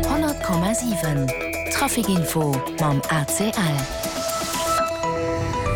100,7 Trafic Info mam ACL.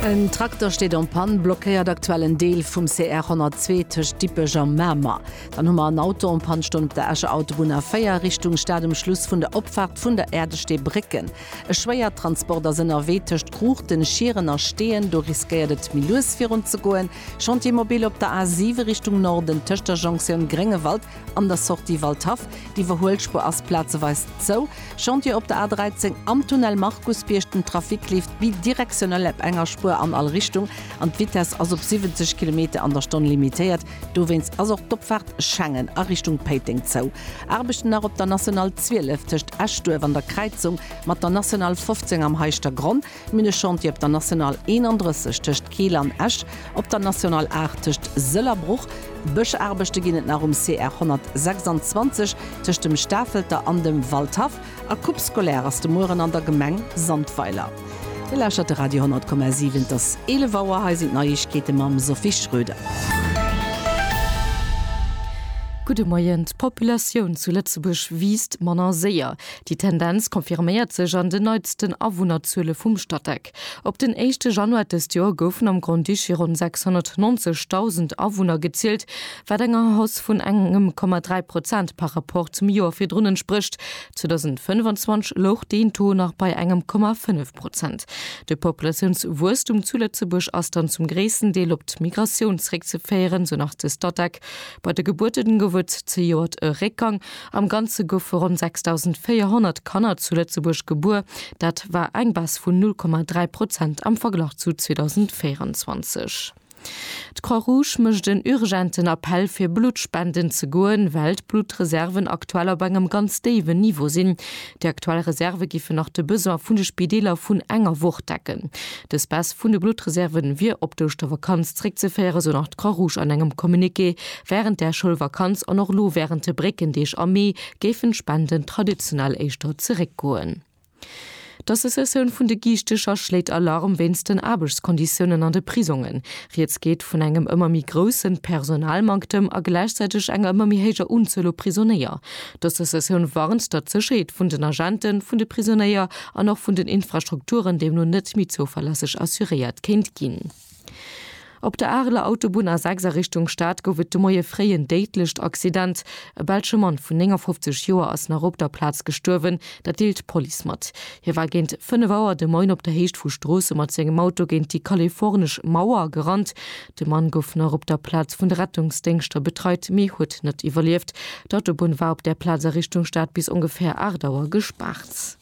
En Trakter steet en Panne, blockéiert aktuell en Deel vum CR 102 tëscht Dippech a Mamer. Dann hu mer en Auto en Panne stoen op der Escher Autobunn A4 Richtung Stad um Schluss vun der Opfaart vun der Äerdestee Brécken. E Schwéiertransport ass ënnerwee tëscht Cruchten, Schieren a Steeën, do riskéiert et méi lues virun ze goen. Chantier mobile op der A7 Richtung Norden tëscht der Jonctioun Gréngewald. An der Sortie Waldhaff, d'Iwwerhuelspuer ass plazeweis zou, Chantier op der A13, am Tunnel Markusbierg, den Trafic leeft bidirektionell ap enger Spuer an all Richtung an d'Vitesse ass op 70 Kilometer an der Stonn limitéiert. Dowéinst ass och d'Opfaart Schengen a Richtung Péiteng zou. Aarbechten nach op der National 12 tëscht Eschduerf an der Kräizung mat der National 15 am Heischtergronn. D'Minechantier op der National 31 tëscht Keel an Esch, op der National 8 tëscht Sëll a Bruch. Bëschaarbechte ginn et nach um CR 126 tëscht dem Stafelter an dem Waldhaff a Coupe scolaire ass de Mueren an der Gemeng Sandweiler. Dir lauschtert de Radio 10,7. Et ass 11 Auer, hei sinn d'Neiegkeete mam Sophie Schröder. Gudde Moien, D'Populatioun zu Lëtzebuerg wiisst manner séier. Déi Tendenz confirméiert sech an den neitsten Awunnerzuele vum Statec. Op den éischte Januar dëst Joer goufen am Grand-Duché ronn 690.000 Awunner gezielt, wat enger Hausse vun engem Komma 3 Prozent par Rapport zum Joer virdrun entsprécht. 2025 louch deen Taux nach bei engem Komma 5 Prozent. De Populatiounswuesstum zu Lëtzebuerg ass dann zum gréissten Deel op d'Migratioun zréckzeféieren, sou nach de Statec. Bei de Gebuerten gouf et zejoert e Réckgang, Am Ganze goufe ronn 6.400 Kanner zu Lëtzebuerg gebuer, dat war eng Baisse vun 0,3 Prozent am Verglach zu 2024. D'Croix-Rouge mécht en urgenten Appell fir Blutt spenden ze goen, well d'Bluttreserven aktuell op engem ganz déiwen Niveau sinn. Déi aktuell Reserve giffen nach de Besoin vun de Spideeler vun enger Woch decken. Dës Baisse vun de Bluttreserve wier op d'Ouschtervakanz zréckzeféieren, esou nach d'Croix Rouge an engem Communiqué. Wärend der Schoulvakanz an och elo wärend de Bréckendeeg am Mee géifen d'Spenden traditionell éischter zeréckgoen. D'Associatioun vun de Giichtecher schléit Alarm wéinst den Aarbechtskonditiounen an de Prisongen. Rieds geet vun engem ëmmer méi groussen Personalmanktem a gläichzäiteg enger ëmmer méi héijer Unzuel u Prisonéier. D'Associatioun warnt, datt d'Sécherheet vun den Agenten, vun de Prisonéier an och vun den Infrastrukturen deemno net méi zouverlässeg assuréiert kéint ginn. Op der Areler Autobunn A6 a Richtung Stad gouf et de Moie fréi en déidlecht Accident. E belsche Mann vun 59 Joer ass nach op der Plaz gestuerwen, dat deelt d'Police mat. Hie war géint 5 Auer de Moien op der Héicht vu Stroosse mat sengem Auto géint déi kalifornesch Mauer gerannt. De Mann gouf nach op der Plaz vun de Rettungsdéngschter betreit, mee huet net iwwerlieft. D'Autobunn war op där Plaz a Richtung Stad bis ongeféier 8 Auer gespaart.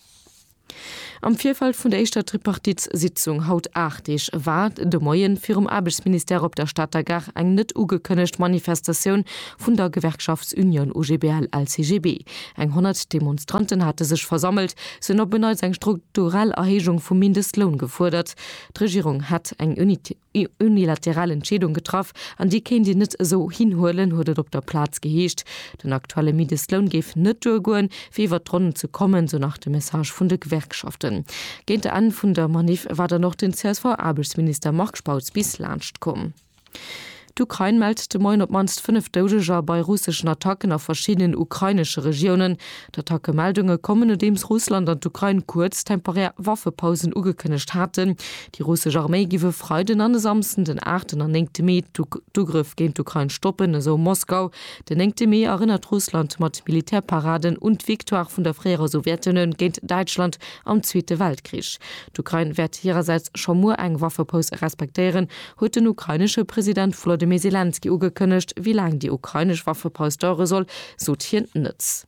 Am Virfeld vun der éischter Tripartitssitzung, haut 8 Deeg, war de Moie virum Aarbechtsministère op der Stater Gare eng net ugekënnegt Manifestatioun vun der Gewerkschaftsunion OGBL-LCGB. Eng 100 Demonstranten hate sech versammelt. Se hunn op en Neits eng strukturell Erhéijung vum Mindestloun gefuerdert. D'Regierung hätt eng Unité. Eng unilateral Entscheedung getraff an déi kéint een net esou hinhuelen, huet et op der Plaz geheescht. Den aktuelle Mindestloun géif net duergoen, fir iwwer d'Ronnen ze kommen, sou nach de Message vun de Gewerkschaften. Géint de Enn vun der Maniff war dann och den CSV-Aarbechtsminister Marc Spautz bis laanscht komm. D'Ukrain mellt de Moien op d'mannst 5 Doudeger bei russeschen Attacken a verschiddenen ukrainesche Regiounen. D'Attacke-Meldunge kommen, nodeems Russland an d'Ukrain kuerz, temporär Waffepausen ugekënnegt haten, Déi russesch Arméi giff e Freiden an e Samsden, den aachten an néngte Mee, d'Ugrëff géint d'Ukrain stoppen, esou Moskau. Den néngte Mee erënnert Russland mat Militärparaden un d'Victoire vun der fréierer Sowjetunioun géint Däitschland am Zweete Weltkrich. D'Ukrain wäert hirersäits scho muer eng Waffepaus respektéieren, huet den ukrainesche President Wolodymyr Selenskyj ugekënnegt. Wéi laang déi ukrainesch Waffepaus dauere soll, sot hien net.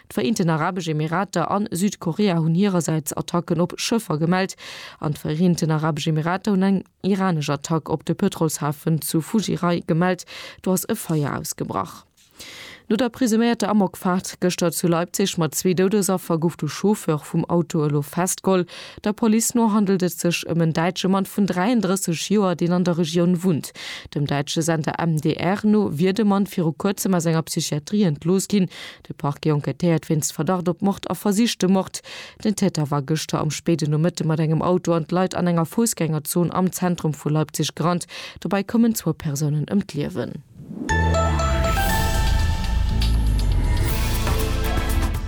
D'Vereenten Arabesch Emirater an Südkorea hunn hirersäits Attacken op Schëffer gemellt, an d'Vereenten Arabesch Emirater hunn eng iranesch Attack op de Pëtrolshafen zu Fujirai gemellt. Do ass e Feier ausgebrach. No der presuméierter Amokfaart gëschter zu Leipzig mat zwee Doudesaffer gouf de Chauffeur vum Auto elo festgeholl. Der Police no handelt et sech ëm en däitsche Mann vun 33 Joer, deen an der Regioun wunnt. Dem däitsche Sender MDR no wier de Mann viru kuerzem aus enger Psychiatrie entlooss ginn. De Parquet enquêtéiert wéinst Verdacht op Mord a versichtem Mord. Den Täter war gëschter am spéiden Nomëtte mat engem Auto an d'Leit an enger Foussgängerzon am Zentrum vu Leipzig gerannt. Dobäi koumen zwou Persounen ëm d'Liewen.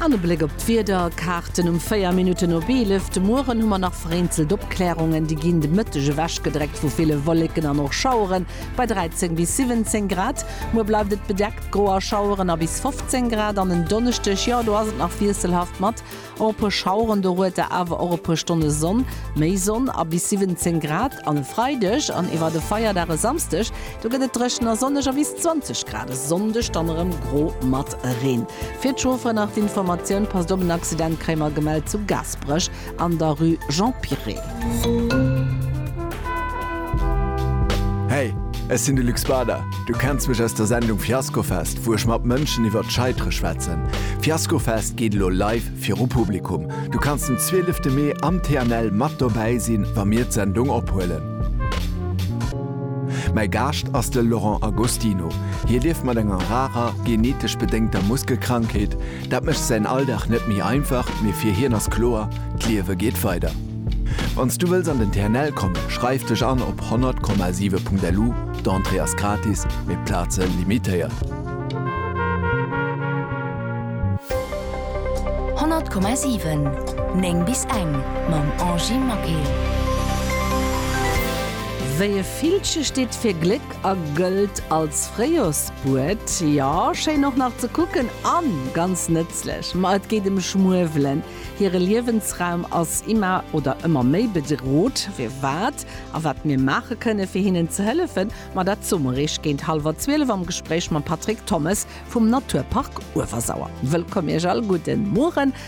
An e Bléck op d'Wiederkaarten um 4 Minutten op 11. De Mueren hu mer nach vereenzelt Opkläerungen, déi ginn de Mëtteg ewech gedreckt vu ville Wolleken an och Schaueren. Bei 13 bis 17 Grad. Muer bleift et bedeckt, gro a Schaueren a bis 15 Grad. An en Donneschdeg, jo do ass et nach wiesselhaft mat och e puer Schaueren. Dorueter awer och e puer Stonne Sonn, méi Sonn a bis 17 Grad. An e Freideg an iwwert e Feierdag e Samsdeg, do gëtt et dréchen a sonneg a bis 20 Grad. E Sonndeg dann erëm gro mat Reen. Fir d'Chaufferen nach d'Informatioun, Passt op, en Accident kréie mer gemellt zu Gaasperech. An der Rue Jean Piret. Hey, ech sinn de Luc Spader. Du kenns mech aus der Sendung Fiaskofest, wou ech mat Mënschen iwwert d'Scheitere schwätzen. Fiaskofest geet elo live viru Publikum. Du kanns den 12 Mee am TNL mat dobäi sinn, wa mir d'Sendung ophuelen. Mäi Gaascht ass de Laurent Agostino. Hie lieft mat enger rarer, genetesch bedéngter Muskelkrankheet, Dat mécht säin Alldag net méi einfach, mee fir hien ass kloer, d'Liewe geet weider. Wann s du wëlls an den TNL kommen, schreif dech an op 100,7.lu, d'Entrée ass gratis, mee d'Plaze limitéiert. 100,7 9 bis eng mam Angy Maquet. Wéi e Villche steet fir Gléck a gëllt als Fréijors. Huet, jo, schéin och nach ze kucken a ganz nëtzlech, ma et geet em Schmuewelen. Hire Liewensraum ass imma oder ëmmer méi bedrot. Firwat a wat mir maache kënne fir hinnen ze hëllefen, ma dat soe mer iech géint hallwer 12 am Gespréich mam Patrick Thommes vum Naturpark Uewersauer. Wëllkomm iech all, gudden Mueren.